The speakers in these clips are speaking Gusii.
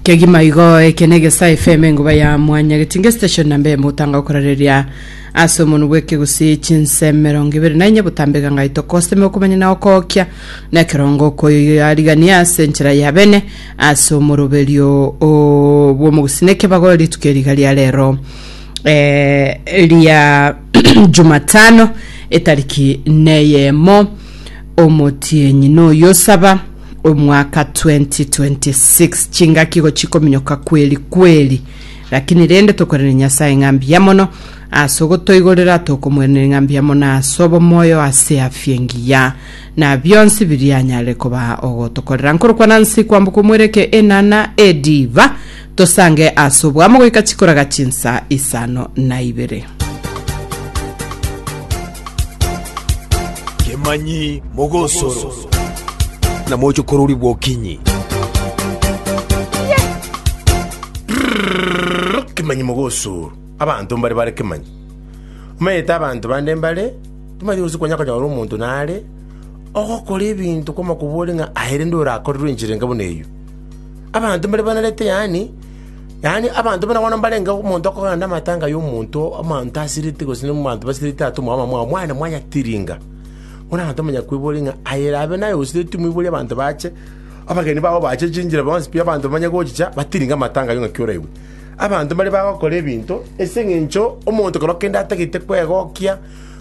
Kegima igo eke negesa FM enguba ya mwanya getinge station namba emo otanga okorareria ase omonu bw'ekegusi chinse emerongo ibere na enye botambeka ngai tokoseme okomanya na okokia na ekerongo okoyoyo yarigania ase enchera ya bene ase omoroberio o- bw'omogusi na ekebago rituko eriga ria rero eh, ria jumatano etariki neyemo omotienyi noyo osaba omwaka 2026 chingaki igo chikominyoka kweri kweri lakini rende tokorene nyasaye ng'a mbuya mono ase ogotoigorera tokomoenere ng'a mbuya mono ase obomoyo ase afya engiya na bionsi biria anyare koba ogotokorera nkorokwana nsi kwamboka omwereke enana ediva Tosange ase oboamo goika chikoraga chinsa isano na ibere. Kemanyi mogosoro na mochokorori bw'okinyi. Kemanyi mogosoro abanto mbare bare kemanyi. Omanyete abanto bande mbare timanyeti gose konya konyora omonto nare ogokora ebinto kw'amakobori ng'a aye rende orakorerwe enchera enga buna eyio. Abanto mbare banarete, yaani abanto bono bono mbarenge omonto okogana namatanga y'omonto omonto asirete gose n'omonto basirete atomwa abamwabo mwane mwanyatiringa. Bono abanto bamanya kweboria ng'a aye erabe naye osiretwe moiborie abanto bache, abageni bao bache chinchera bonsi pi abanto bamanye gochicha batiringe amatanga ayio ng'aki oraigwe. Abanto mbare bagokora ebinto ase eng'encho omonto kero kende atagete kwegokia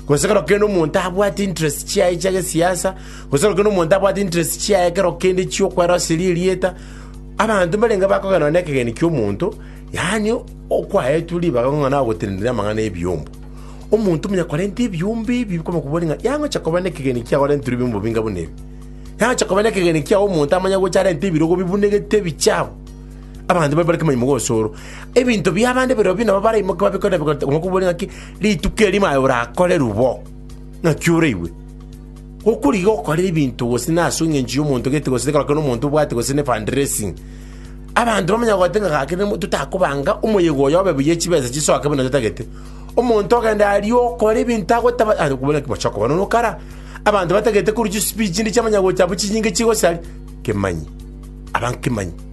gose kero kende omonto abwate interest chiaye chia gesiasa. Gose ekero omonto abwate interest chiaye ekero kende chi'okweroseria erieta, abanto mbarenge bakogenda nonye nekegeni ki'omonto, yaani okwaetwe ribaga ng'a nagotenenera amang'ana ebiombo. Omonto manya korenta ebiombo ebi bikaba kobori ng'a yangocha koba nekegeni kiao arenterwe ebiombo binga buna ebi. Yangocha koba nekegeni kiao omonto amanye gocha arente ebirogo bibunegete ebichabu. Abanto babe bare kemanyi mogosoro. Ebinto biabande birobio bi nabo baraimoke babikore bikore kobori ng'aki rituko eri maye orakorerwe bo, ng'aki oraigwe. Gokorigia gokorera ebinto gose nase engencho y'omonto gete gose ekero kende omonto obwate gose ne fund raising, abanto bamanya goeta ng'a gaki nemo totakobanga omoyega oyo obe buya chibesa chisoke buna totagete. Omonto ogende aria okore ebinto agotaba ah okobua naki bochoko bono na okara. Abanto batagete korwa chispeech chinde chiamanya gocha abwo chinyinge chigosaria. Kemanyi, aba nkemanyi.